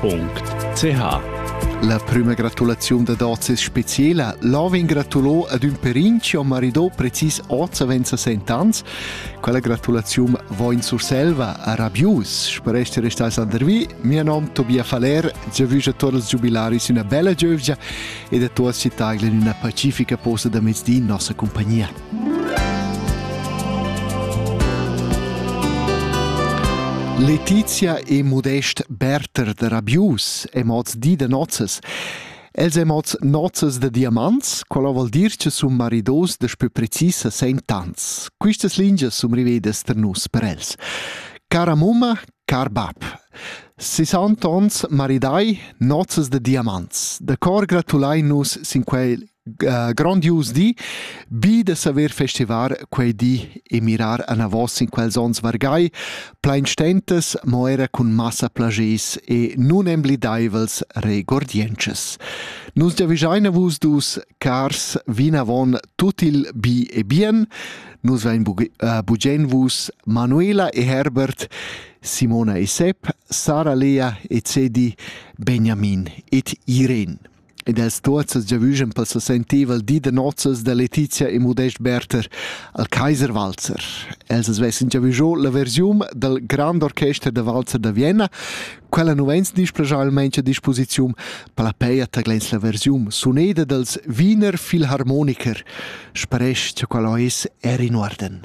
.ch La prüma gratulaziun dad hoz es speciela. Lavin gratulò ad ün perin chi ho maridò precis hoz avend ans. Quella gratulaziun vo in Surselva a Rabius. Sper ester restais Andervi. Mia nom Tobia Faller, giavüsch a tuot els giubilaris üna bella giövgia ed a tuot città in üna pacifica posta da mezdi in nossa compagnia. Letizia e modest Berter da Rabius è mods di da nozzas. Els è mods nozzas da diamants, quella vuol dir che sun maridos da più precisa sentans. Quistas lingias sun rivedas per nus per els. Cara mumma, car bab. 60 ons maridai, nozzas da diamants. Da cor gratulai nus sin quel grandius di bi da saver festivar quei di e mirar anavos in quels ons vargai plein stentas mo era cun massa plagis e nun emblideivels regordiences nus giavischeina vus dus cars vinavon tut il bi e bien nus vein äh, bugen vus Manuela e Herbert Simona e Sep Sara Lea e Cedi Benjamin et Irene ed els tuozzas giavüschan pel sensentivel di da nozzas da Letizia e Modest Berther al Kaiser Walzer. Els as vessan giavüscho la versiun dal Grand Orchester da Walzer da Vienna. Quella nu vegns displajà almain a disposiziun per la peia taglens la versiun suneda dals Wiener Philharmoniker, sparesch cha quella ais er in uorden.